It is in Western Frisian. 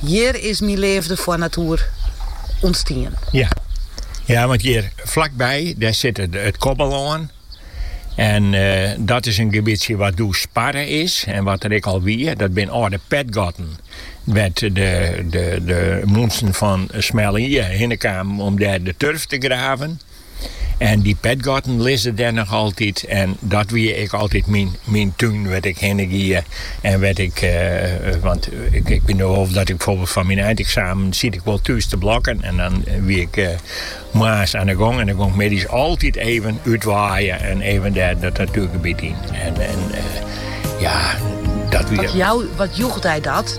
Hjir is myn leafde foar natoer ûntstien. Ja. ja, want hjir flakby, dêr sit it, it Kobbelân. En eh, dat is in gebietsje wat doe sparre is en wat der ek al wie. Dat binne âlde petgatten. Wêr't de, de, de minsken fan Smelle Ie eh, hinne kamen om dêr de turf te graven. En dy petgatten lizze dêr noch altyd. En dat wie ek altyd myn, myn tún wêr't ik hinne gie. En wêr't ik, eh, want ik, ik wit noch wol dat ik byfoarbyld fan myn eineksamen siet ik wol thús te blokken. En dan wie ik eh, moarns oan de gong en dan gong ik middeis altyd even útwaaien en even dêr dat natuergebiet yn. En, en eh, ja, dat wie. Wat, jou, wat joech dy dat?